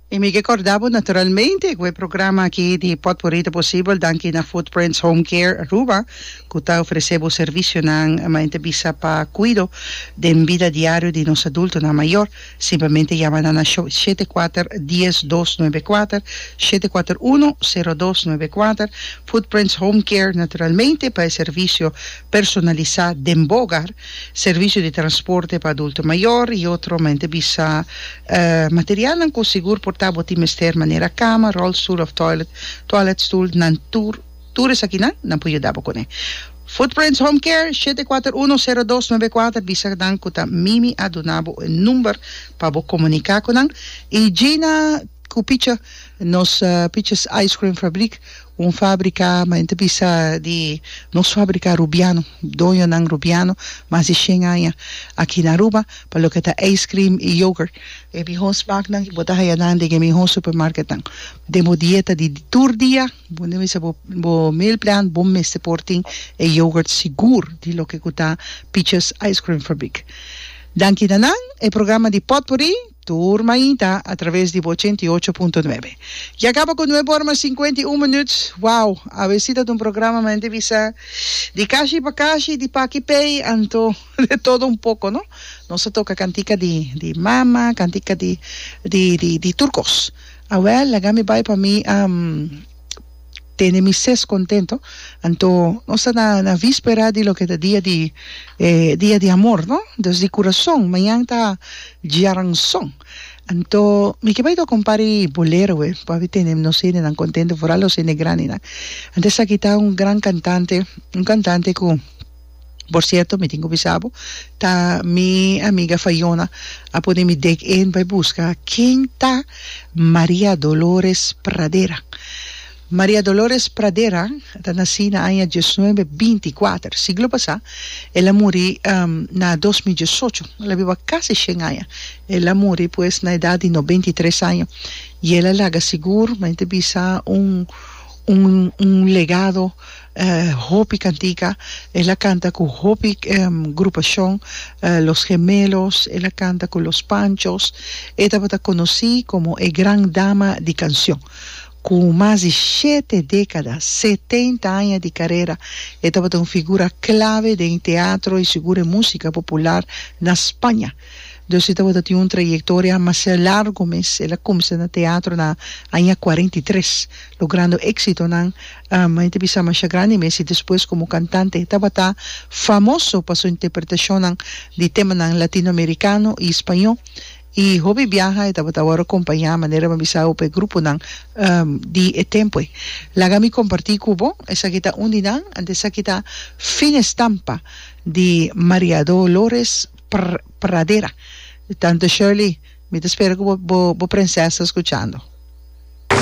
Y mi ke corda bo naturalmente cu e programa aki di Potpourri ta posibel danki na Footprints Home Care Aruba cu ta ofrece bo servicionan men ta bisa pa cuido den bida diario di nos adultonan mayor. Simplemente yama nan na sho shete kuater dies dos nuebe kuater, shete kuater uno sero dos nuebe kuater, Footprints Home Care naturalmente pa e servicio personalisa den bo ogar. Servisio di transporte pa adulto mayor y otro mente bisa materialnan cu sigur por ta bo tin mester manera cama, rolstoel of toilet, toilet stoel nan tur tur esakinan nan por yuda bo cune. Footprints Home Care shete kuater uno sero dos nove kuater bisa nan cu ta Mimi a duna bo e number pa bo comunica cu nan y Gina cu picha nos piches ice cream fabriek Un fábrika, ma hende ta bisa di nos fábrika Rubiano, doñonan Rubiano, mas di shen aña aki na Aruba, pa loke ta ijscream i yoghurt. E mihó smaknan i bo ta haya nan den e mihó supermarketnan. Den bo dieta di tur dia, bo hende mester bo bo meal plan, bo mester por tin e yoghurt sigur di loke ku ta Pietjes Ijscreamfabriek. Danki na nan, e programa di Potpourri Tur mainta a traves di bo ochenta i ocho punto nuebe. Ya caba cu nuebe ora mas cincuenta i un minuut. Wow! Awe si ta ta un programa ma hende bisa di cashi pa cashi, di paki pey anto de todo un poco no. Nos a toca cantica di di mama, cantica di di di tur cos. Awel laga mi bay pa mi. tene mi ses contento anto nos ta na na víspera di loke ta dia di eh dia di amor no dus di curason mañan ta djiaranson anto mi ke bai tok un par di bolero e por abi tene nos hendenan contento vooral nos hende grandenan anto esaki ta un gran cantante un cantante cu Por cierto mi tin cu bisa bo ta mi amiga Fayona a pone mi dek en bay busca ken ta Maria Dolores Pradera. Maria Dolores Pradera ta naci na aña dieznuebe binti kuater siglo pasa el a muri na dos mil diesocho el a biba casi shen aña el a muri pues na edad di nobenta i tres aña y el a laga sigur men ta bisa un un un legado Hopi kantika, el a kanta ku hopi grupashon, Los Gemelos, el a kanta ku Los Panchos, e tabata konosí komo e gran dama di kanshon. Ku mas di shete dékada, setenta aña di karera, e tabata un figura klave den e teatro i sigur e músika popular na Spaña. Dossi tabata tin un trayectoria masiá largu mes. El a kumsa na teatro na aña kuarenta i tres, logrando éksitonan mi ta bisa mashá grandi mes, i despues komo kantante. E tabata famoso pa su interpretashonnan di temanan latinoamerikano i spañó, i hopi biaha e tabata awor akompañá, manera mi a bisa hopi gruponan di e tempoe. Laga mi kompartí ku bo, esaki ta un di nan, anto esaki ta Fin Estampa di Maria Dolores. pradera. Tante Shirley mi ta spera cu bo princesa scuchando.